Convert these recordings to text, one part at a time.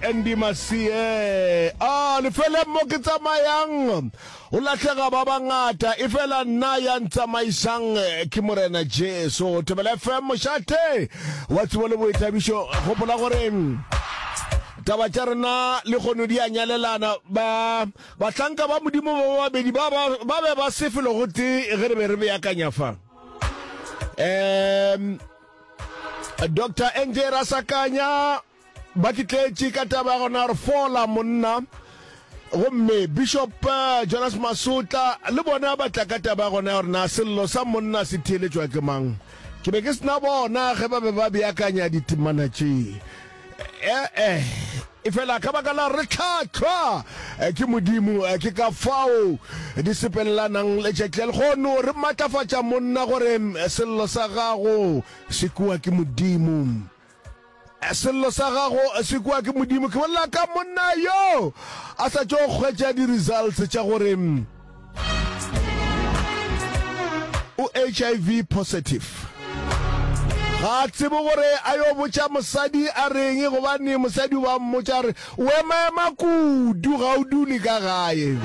Andy Masie a lefeleng mo ke tsamayang o lahlega ba bangata e fela nna ya ntsamaisang ke morena Jesu Tebela FM mošate wa tsebo le boithabišo gopola gore taba tša rena le kgono di a nyalelana ba bahlanka ba modimo ba babedi ba ba ba be ba se felo gote ge re be re beakanya fa um dr nj rasakanya ba ke tletše ka taba ya gona gore fola monna gomme bishop eh, jonas masotla le bona ba tla ka taba ya gona ya gore na sello sa monna se theeletšwa ke mang ke be ke sena bona ge ba be ba beakanya ditemana tše ee eh, e fela ka baka la re tlhatlhwa eh, ke modimo eh, ke ka fao di sepelelanang le tšetlel gono re maatlafatša monna gore mm, sello sa gago se kua ke modimo Sello sa gago se kwa ke Modimo. Ke bolela ka monna yo a sa tšo kgwetša di-results tša gore o HIV positive. Ga tsebe gore a yo botša mosadi a reng gobane mosadi o ba mmotša re O emaema kudu, ga o dule ka gae.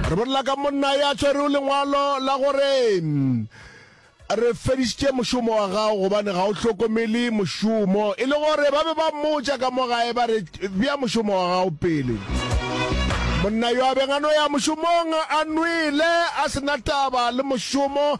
Re bolela ka monna ya tshwerego lengwalo la gore re fedišitše mošomo wa gago gobane ga o hlokomele mošomo, e le gore ba be ba mmotša ka mo gae ba re, Bea mošomo wa gago pele. Monna yo a beng a no ya mošomong a nwele, a se na taba le mošomo,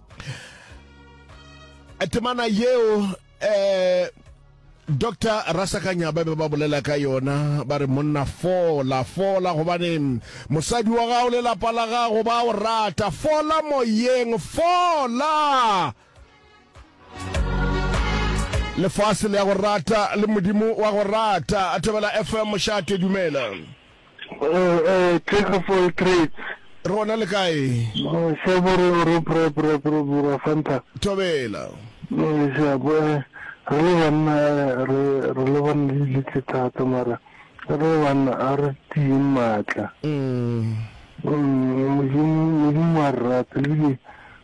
a temana yeo eh dr rasakanya ba be ba bolela ka yona ba re monna fola fola gobane mosadi wa gago le lapa la gago ba o rata fola moyeng fola lefase le ya go rata le modimo wa go rata a thobela fm mošate dumela Jack of all trades. Re gona le kae? Se bo re o re pre pre pre bura fanta. Thobela. Se a bo re le banna re re le banna le litle thata mara re le banna a re tiye matla. Mm. Modimo modimo a rata le bile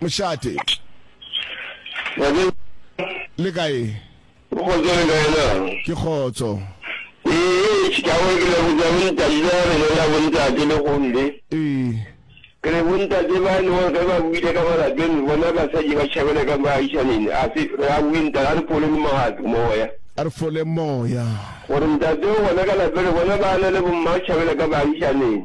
Mošate. Ngwanenyana. Le kae? Go kgotso le kae na? Ke kgotso. Ee, ke a gore ke le go ja bontate le gore le na bontate le gomme. Ee. Ke re bontate ba le gore ge ba buile ka malapeng bona basadi ba tšhabela ka baagišaneng a se re a bue ntate a re fole le magato moya. A re fole moya. Gore ntate o bona ka lapeng re bona ba na le bomma tšhabela ka baagišaneng.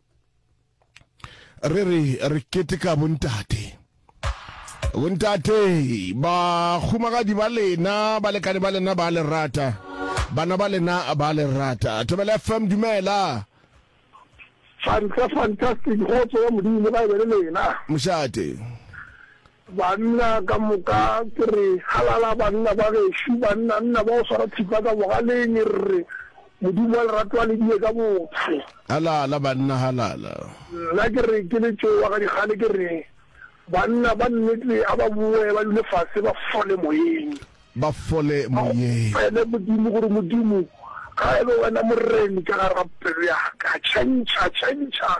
re re re keteka bontate bontate bagumagadi ba lena balekane ba lena ba le rata bana ba lena ba le rata thobela fm dumela fanta fantastic kgotso ya modimo ga e be le lena mošate Banna ka moka, ke re, Halala, banna ba gešo, banna, nna ba go swara thipa ka bogaleng, re re, Modimo wa lerato a le die ka botho. Halala, banna, halala. Nna ke re, ke le tšo wa ga dikgale, ke re, Banna ba nnete a ba bowe, ba dule fase, ba fole moyeng. ba fole moyeng. A go opele Modimo gore, Modimo, ga e be Wena Moreni ka gare ga pelo ya ka, tšhentšha, tšhentšha,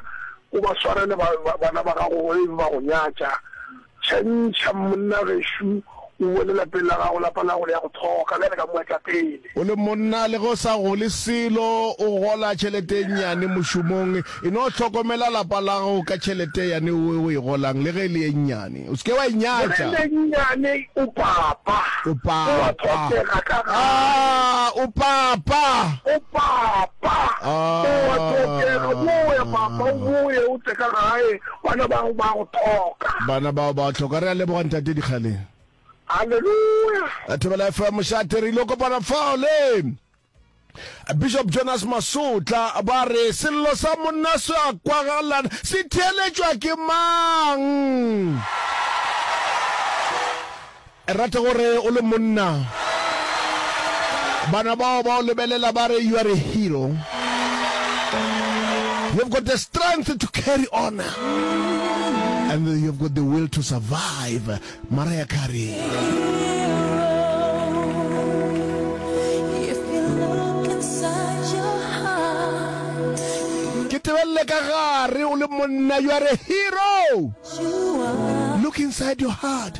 o ba swarele ba, ba, bana ba gago ge e be ba go nyatša. Tšhentšha monna gešo, o boe le lapeng la gago, lapa la gago le ya go tlhoka, bjale ka moetlapele. O le monna, le ge o sa gole selo, o gola tšhelete e nnyane mošomong, E no hlokomela lapa la gago ka tšhelete yane o e golang, le ge e le e nnyane. O se ke wa e nyatša. Le ge e le nnyane, o papa. O papa. O a tlhokega ka gae. Aa, o papa. O papa. Aa. O a tlhokega. O boe, papa, o boe, o tle ka gae. Bana ba gago ba go tlhoka. Bana ba gago ba go tlhoka. Re a leboga, Ntate Dikgaleng. Haleluya! Thobela FM, Mošate, re ile kopana fao le. Bishop Jonas Masotla ba re sello sa monna se a kwagalana se theeletšwa ke mang? Rate gore o le monna bana bao ba o lebelela ba re you are a hero you've got the strength to carry on and you've got the will to survive Mariah Carey. Ke tebelele ka gare o le monna, you are a hero. Look inside your heart.